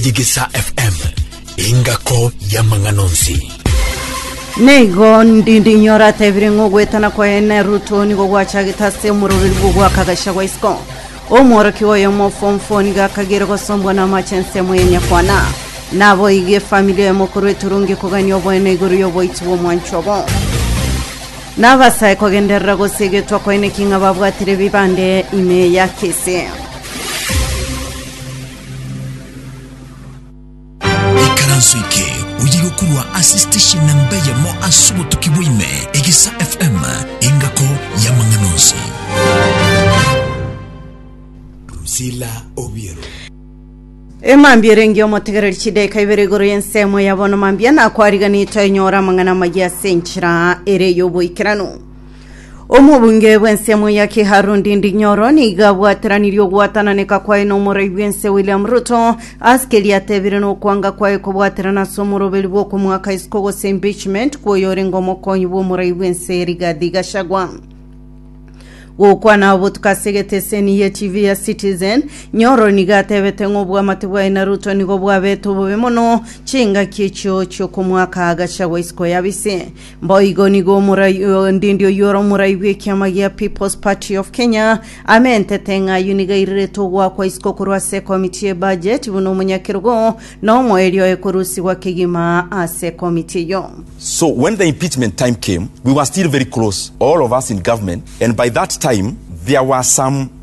Yegesa FM, engako y'amang'ana onsi. Neigo ndindinyora atebire ng'a ogwetana kwaye neruto nigo gwachagete ase omororeri bw'ogwaka agachagwa isiko omworoki oyo omofomfo nigo akagere gosombwa n'amache ensemo ya nyakwana naboigi efamili oyo mokuru eturungi kogania oboene igoro y'oboiti bw'omwancho obo nabasae kogenderera gose egetwa kwaye neki ng'a babwatire bibande ime ya kese ikaranso eke oyige korwa ase station namba eyemo ase obotuki bwaime egisa fm engako y'amang'ana onsi Rusila Obiero. emambia erengi omotegereri chidaika ibere igoro y'ensemo ya bono mambia nakwariganito enyora amang'ana amaya ase enchera ere y'oboikeranu Omobunge bw'ensemo ya Kiharu Ndindi Nyoro nigo abwateranirie ogwatananeka kwaye n'omorai bw'ense William Ruto ase keria atebire nokwanga kwaye kobwaterana ase omoroberi bw'okomoaka isiko gose impeachment kw'oyorenge omokonyi bw'omorai bw'ense Rigathi Gachagua gokwana obotuko ase egeteseni ye TV ya Citizen Nyoro nigo atebete ng'a obwamate bwaye na Ruto nigo bwabete obobe mono chingaki echio chiokomoaka Gachagua isiko yabise Mboigo nigo omorai o- ndindi oyio ore omorai bw'ekiama gia People's Party of Kenya amentete ng'a ayio nigo airerete ogoakwa isiko korwa ase ekomiti ye budget buna omonyakerogo na omoerio oye korusigwa kegima ase ekomiti eyio. So when the impeachment time came, we were still very close, all of us in government, and by that time there were some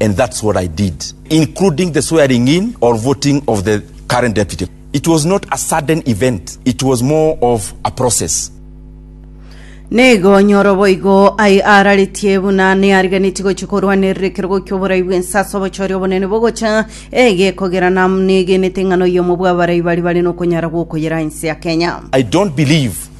and that's what I did, including the swearing in or voting of the current deputy. It was not a sudden event, it was more of a process. Negonyoro boigo ai araretie buna neariganeti gochi korwanerera ekerogo ki'oborai bw'ensa ase obochori obonene bogocha egekogera na negenete eng'ana oyomo bw'abarai bari bare nokonyara gwokoyera ense ya Kenya. I don't believe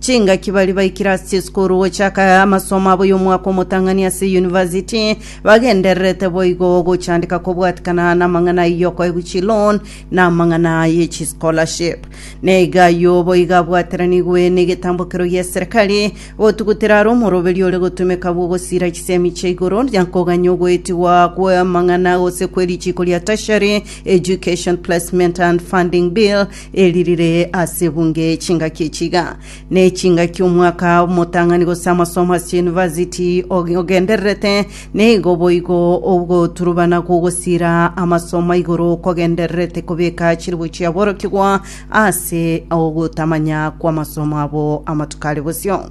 Chingaki baria baikire ase chisukuru gochaka amasomo abo y'omwaka omotang'ani ase eyunivasiti bagendererete boigo gochandeka kobwatikana n'amang'ana ayio okoegwa chiloan na amang'ana ye chischolarship. Na iga ayio boigo abwateranigwe n'egetambokero gi'eserekari gotugutera are omoroberio ore gotumeka bw'ogosiira chisemi chia igoro na koganya ogoetigwa kw'amang'ana gose kw'erichiko ria Tertiary Education Placement and Funding Bill Eri rire ase ebunge chingaki echi iga, ne chingaki omwaka omotang'ani gose amasomo ase university og- ogendererete, nigo boigo ogoturubana gogosira amasomo aigoro kogendererete kobeka chiribu chiaborokigwa ase ogotamanya kw'amasomo abo amatuko are bosio.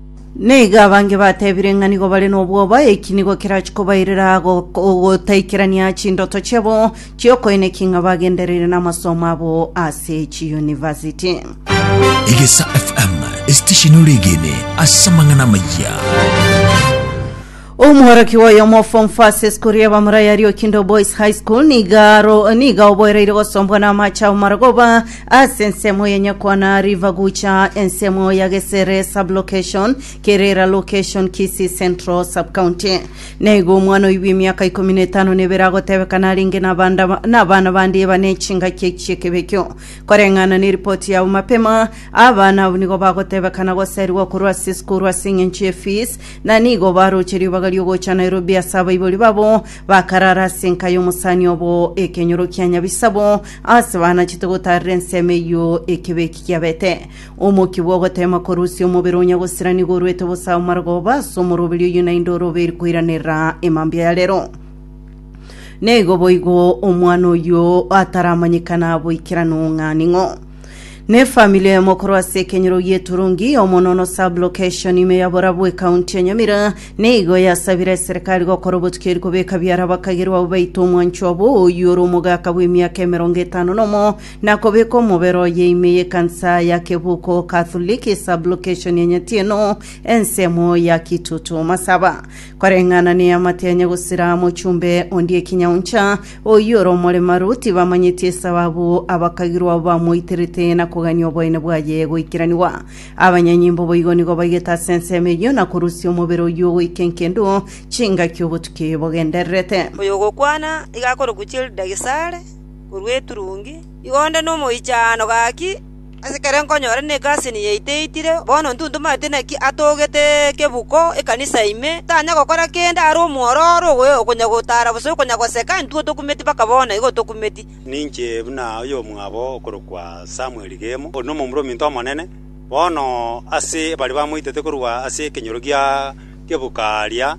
Naiga abange batebire ng'a nigo bare nobwoba, eki nigo kerachia kobairera go- ogotaikerania chindoto chiabo chi'okoineki ng'a bagendereire namasomo abo ase chiyunivasiti. Egesa FM, esitesheni ore egene ase amang'ana amaya. Omworokigwa oyomo o form first esukuru ya bamura ya Riokindo Boys High School niga aro niga oboereire gosombwa n'amache amamara goba ase ensemo ya Nyakwana River gocha ensemo ya Gesere Sub-Location, Kerera Location, Kisii Central Sub-County. Naigo omwana oibwa emiaka ikomi na etano na ebere agotebeka narenge nabanda nabana bande ebane echingaki eki chi'ekebe ekio. Koreng'ana neripoti yabo mapema, abana abwo nigo bagotebeka na goserigwa korwa ase esukuru ase eng'encho ye fees Na nigo baroche ribaga ri'ogocha Nairobi ase abaibori babo, bakarara ase enka y'omosani obo ekenyoro kia nyabisabo, aase banachete gotaarera ensemo eyio ekebe eki kiabete. Omokia bw'ogoteema korusia omobere onya gosira nigo orwete bosa amarogoba ase omoroberi oyio naende orobe eri koiranerera emambia ya rero. Neigo boigo omwana oyio ataramanyekana boikeranu ng'a ning'o. Ne family eye mokorwa ase ekenyoro gieturungi yomonono sub location ime ya borabu ekaunti ya nyamira nigo yasabire eserikali gokora obotuki eri kobeka biara abakagerwa abo baito omwancho abo oyio ore omogaka bw'emiaka emerongo etano nomo na kobeka omobere oye ime yekansa ya kebuko catholic sub location ya nyatieno ensemo ya kitutu masaba koreng'ana ne amate ya nyagosira mochumbe ondie kinyauncha Oyio ore omoremaru tibamanyeti esababu abakagirwa abo bamoiterete na kogania oboyene bwaye goikiranigwa. Abanyanyimbo boigo nigo baigete ase ensemo eyio na korusia omobere oyio goika engendu chingaki obotuki bogendererete. Oyogokwana iga akorokwa Childagicare, korwa eturungi, igo onde nomoichaano gaki. Asekare nkonyore negasi eye yaito eitire, bono ntuntumanete naki atogete ekebuko ekanisa ime, tanya gokora kende are omwororo ogoe okonya gotara gose okonya goseka, intwe otokumeti mpaka bono igo otokumeti. Ninche buna oyomwabo okorokwa Samueli Gemo, ore nomomura ominto omonene, bono ase baria bamoitete korwa ase ekenyoro gia kebuko aaria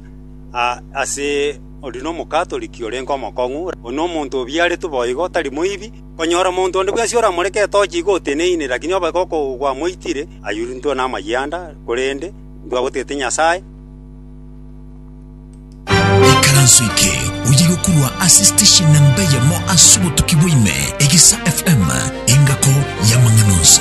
ase, oria nomokatoliki orenge omokong'u, oria nomonto obiaretwe boigo, tari moibi. Konyora omonto onde bwensi oramoreke etochi igo oteneine, lakini obe gokogwamoitire, ayurie intwe namaiga anda, korende intwe agotete Nyasae. Ikaranso eke oye gokurwa ase station namba eyemo ase obotuki bwa ime, Egesa FM, engako y'amang'ana onsi.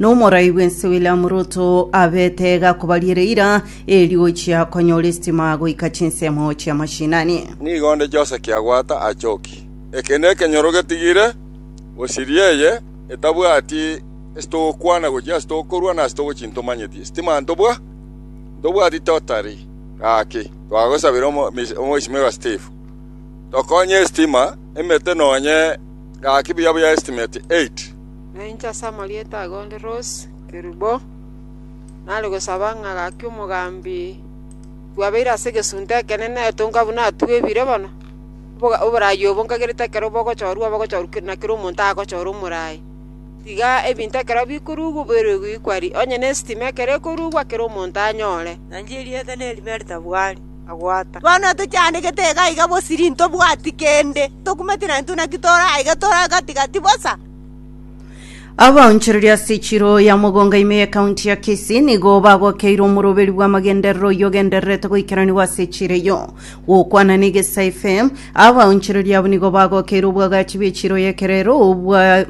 Nomorai bw'ense William Ruto abete iga akobariera eira erio gochia konyora esitima goika chinsemo chia mashinani. Nigo onde Jose Kiagwata achoki. Eke nekenyoro getigire gosiria eye etabwati ase togokwana gochia ase togokorwa na ase togochia ntomanyeti sitima ntobwa ntobwati totari. Gaki twagosabire Omweshimiwa Steve tokonye esitima emete nonye gaki buya buya estimate 8. Na inche ase amarieta ago onde Rose Kerubo, nare gosaba ng'a gaki omogambi bwabeire ase egesunte ekenene etonka buna atwebire bono, oboga- oboraai obo nkagerete ekero bogochorwa bogochorwa ke- na kera omonto agochora omoraai, tiga ebinto ekero bikorugwa oboirwe goikwa ri, onye na estima ekero ekorugwa kera omonto anyore. Na inche erieta nerime ritabwari, agwata. Bono tochiandegete iga iga bosiri ntobwati kende, tokumeti naintwe naki tore aiga tore gati gati bosa. Abaonchoreria ase chiro ya mogonga ime ye county ya Kisii nigo bagokeirwe omoroberi bw'amagenderero oyio ogendererete goikeranigwa ase chiro eyio. Gokwana na Egesa FM, abaonchoreria abo nigo bagokeirwe obwagachi bwe chiro y'ekerero obwa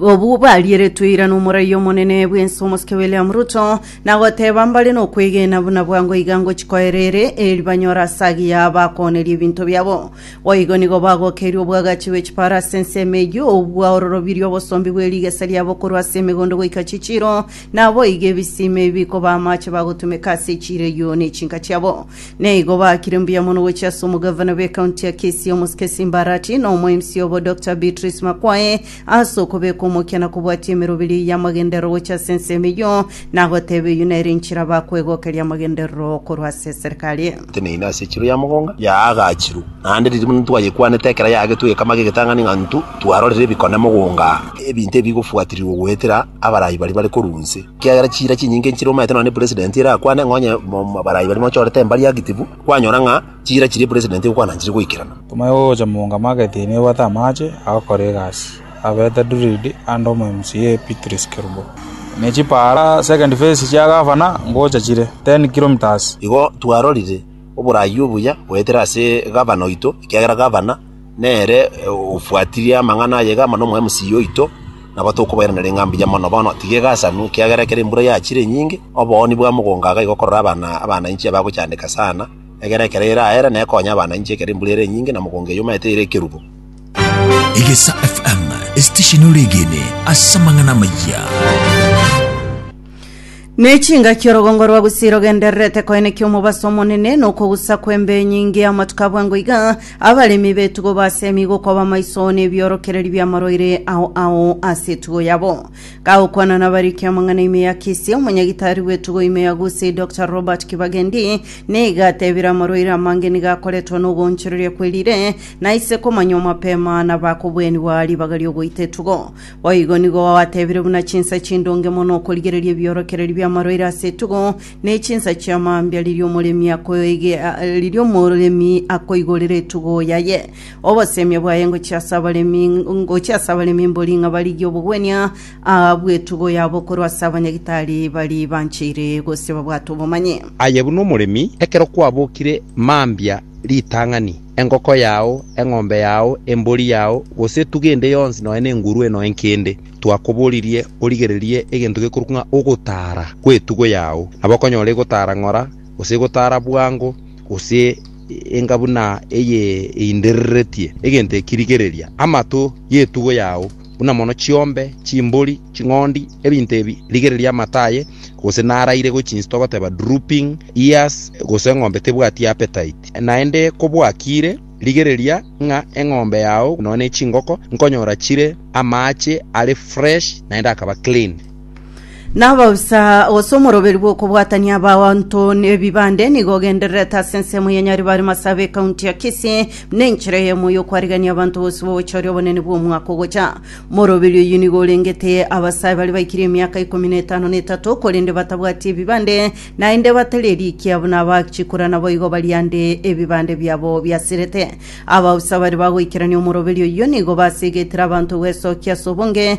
obu barieretwe ira n'omoraia omonene bw'ense omosike William Ruto na goteba mbare nokwegena buna bwango iga ngochikoerere eri banyore ase agiya bakooneria ebinto biabo Boigo nigo bagokeirwe obwagachi bwe chipaaro ase ensemo eyio, obua ororobirie obosombi bwe rigesa riabo korwa ase emegondo goika chichiiro, na boigo ebisima ebi bikoba amache bagotumeka ase echiiro eyio ne chinka chiabo. Na igo baakire mbuya mono gochia ase omogavana bw'ecounty ya Kisii, Omosike Simbarati, na omo-MC obo Doctor Beatrice Makwae, Ase okobeka omokiano kobwatia emerobiri y'amagenderero gochia ase ensemo eyio, nagoteeba eyio nere enchera bakwegokeria amagenderero korwa ase eserikari. Teneina ase echiro ya mogonga yaagachirwe, naende riria buna twayekwanete ekero yaagetwe egekama gegetang'ani ng'a intwe twarorire ebikone mogonga, ebinto ebi bigofuatirirwa goetera abarai baria bare korwa inse, ekiagera chiira chinyinge nchire omanyete nonya ne president erakwane ng'a onye abarai baria mochorete embari active, kwanyora ng'a Chiira chiria president okwananchire goikerana. Timaya ogocha monga mageti ime ebwate amache agokora egasi, abete Dulid ande omomca Beatrice Kerubo. Ne chipaara, second phase, chia gavana ngocha chire 10 kilometres. Igo twarorire oboraai obuya goetera ase gavana oito, ekiagera gavana nere obwatirie amang'ana aye iga amo nomo mca oito, nabo tokobairaneria ng'a mbuya mono. Bono tiga egasanu, ekiagera ekero embura yachire enyinge, obooni bwa mogongo iga igokorora abana abana inche abagochandeka sana. Egera ekero ere aera ne konya abana inche ekero embura ere enyinge na mogongo eyomaete ere ekerubo. Egesa FM, esitesheni oregene ase amang'ana amayia. Nechingaki orogongo rwa Gusii rogendererete koenekia omobaso omonene nokogusa kw'embe enyinge y'amatuko abwango iga, abaremi b'etugo base emigo koba maiso nebiorokereri bi'amarwaire ao ao ase etugo yabo. Gagokwana nabariki amang'ana ime ya Kisii, omonyagitari bw'etugo ime ya Gusii Dr Robert Kibagendi niga atebire amarwaire amange nigo akoretwa n'ogoonchoreria kwerire na ise komanywa mapema nabakobwenigwa ribaga ri'ogoita etugo. Boigo nigo gwatebire buna chinsa chindonge mono okorigereria ebiorokereri bi'amarwaire ase etugo ne chinsa chia mambia riria omoremi akoige- riria omoremi akoigorera etugo yaye. Obosemia bwaye ngochia ase abaremi, ngochia ase abaremi mbori ng'a barigie obogwenia aa bw'etugo yabo korwa ase abanyagitari baria bancheire gose babwate obomanyi. Aye buna omoremi, ekero kwabokire mambia ritang'ani, engoko yao, eng'ombe yao, embori yao, gose etugo ende yonsi nonya nengurue nonya enkende, twakoboririe origererie egento gekorokwa ng'a ogotaara kw'etugo yao, nabo okonyora egotara ng'ora, gose egotara bwango, gose. enga buna eye eindereretie egento eki, rigereria amato y'etugo yao, buna mono chiombe, chimbori, ching'ondi, ebinto ebi, rigereria amato aye, gose naraire gochia inse togoteba drooping ears, gose eng'ombe tebwati appetite. Naende kobwakire, rigereria ng'a eng'ombe yao nonya ne chingoko nkonyora chire amaache are fresh naende akaba clean. N'abaoisa gose omoroberi bw'okobwatania abanto n'ebibande nigo ogendererete ase ensemo ya Nyaribare Masabe ekaunti ya Kisii buna enchera eyemo y'okwarigania abanto bonsi b'ogochooria obonene bw'omwaka ogocha. Moroberi oyio nigo orengete abasae baria baikirie emiaka ikomi na etano na etato korende batabwati ebibande naende batari erikia buna abachikura naboigo bari ande ebibande biabo biasirete. Abaoisa baria bagoikerania omoroberi oyio nigo basigetire abanto gwesokia ase obonge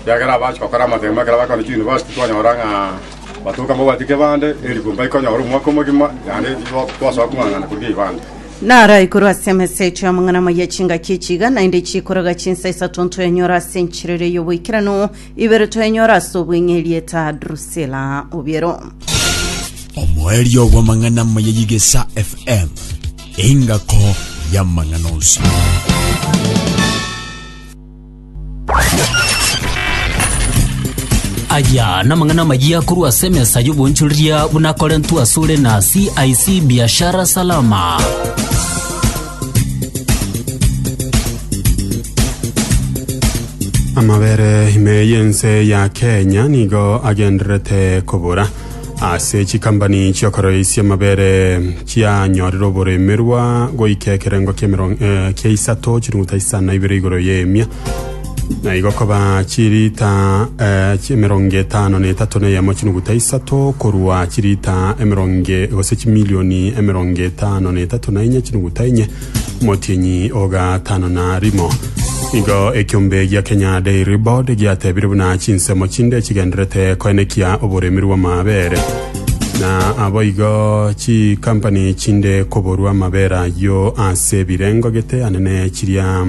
Ekiagera abache gokora amatemo ekero bakoorire chiyunivasiti twanyora ng'a batooka mbabwati kebande, erikwa mbaikonyora omwaka omogima, naende titwasoa kong'ang'ana korigia eibande. Naro aigoro ase emesechio y'amang'ana amaya chingaki echi iga naende chikoroga chinsa isato ntoyenyora ase enchiriri y'oboikeranu, ibere toyenyora ase obweng'e erieta Drusila Obiero. Omoerio bw'amang'ana amaya y'Egesa FM, engako y'amang'ana onsi. Aya namang'ana amayia korwa ase emesa y'obonchoreria buna akorentwe asore na CIC Biashara Salama. amabere ime y'ense ya kenya nigo agendererete kobora Ase chikampani chi'okoroisia amabere chianyorire oboremerwa goika ekerengo ki'emero- eh, kia isato chinuguta isa na ibere igoro y'emia na igo koba chirita eh, chi- emerongo etano na etato na eyemo chinuguta isato korwa chirita emerongo gose chimilioni emerongo etano na etato na enye chinuguta enye Motienyi o gatano na rimo. Igo ekiombe gia Kenya Dairy Board giatebire buna chinsemo chinde chigenderete koenekia oboremi rw'amabere na aboigo chikampani chinde koborwa amabere ayio ase ebirengo gete anene chiria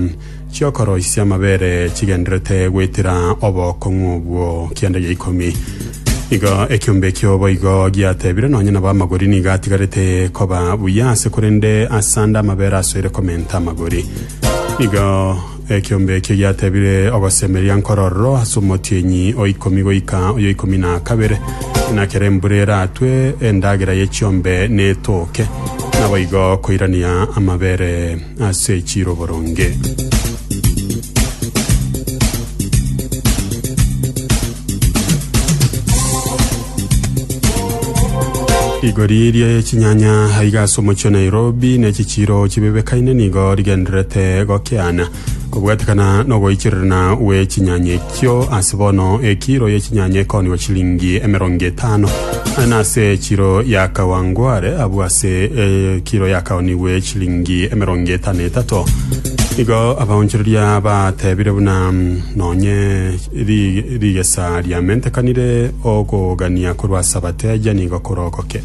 chi'okoroisia amabere chigendererete goitera obokong'u obwo kianda gia ikomi. Igo ekiombe ekio boigo giatebire, nonya nabo amagori nigo atigarete koba buya ase, korende ase ande amabere asoire komenta amagori. Igo ekiombe ekio giatebire, ogosemeria nkorororo ase omotienyi o ikomi goika oyo ikomi na kabere, na kera embura eratwe endagera ye chiombe netoke, naboigo koirania amabere. ase chiroboronge. Rigori eria ya chinyanya aiga ase omochie o Nairobi na echichiro chibebekaine nigo rigendererete gokeana kobwatekana na ogoichererana gwe chinyanya eke. Chio ase bono ekiro ye chinyanya ekoonigwa chilingi emerongo etano, na ase ekiro ya kawangware abwo ase ekiro yakaonigwe chilingi emerongo etano etato. Igo abaonchoreria batebire buna nonye ri- rigesa riamentekanire okogania korwa ase abateja nigo korokoke.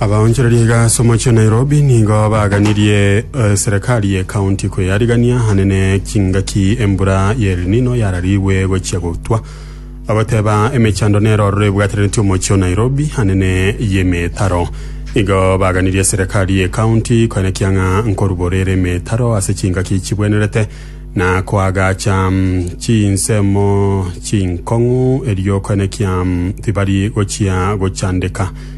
Abaonchoreria iga ase omochie o Nairobi nigo baganirie eserekari ye county kweyarigania hanene chingaki embura ya El Nino yararigwe gochia gotwa, bagoteba emechando nero ororo ebwataneretie omochie o Nairobi hanene y'emetaro. Igo baganirie eserekari ye county koenekia ng'a nkoruborere emetaro ase chingaki chibwenerete na koagacha chinsemo chinkong'u erio koenekia tibari gochia gochandeka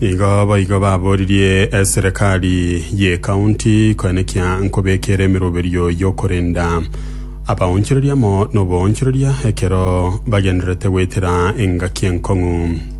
Igo boigo baboririe eserekari y'ecounty koe nekia nkobekere emeroberio y'okorenda abaonchoreria amo noboonchoreria ekero bagendererete goetera engaki enkong'u.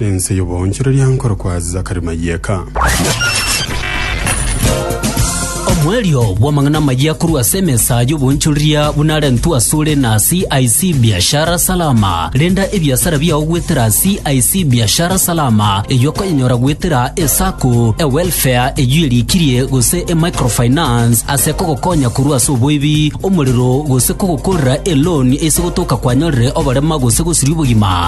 Ense y'oboonchoreria nkorokwa Zakari Mayeka. Omoerio bw'amang'ana amayia korwa ase emesa y'oboonchoreria buna arentwe asore na CIC Biashara Salama. Renda ebiasara biao goetera CIC Biashara Salama, eyio okonyenyora goetera eSacco, eWelfare eyio erikirie, gose eMicrofinance ase kogokonya korwa ase oboibi, omorero, gose kogokorera eloan ase gotoka kwanyorire oborema gose gosiria obogima.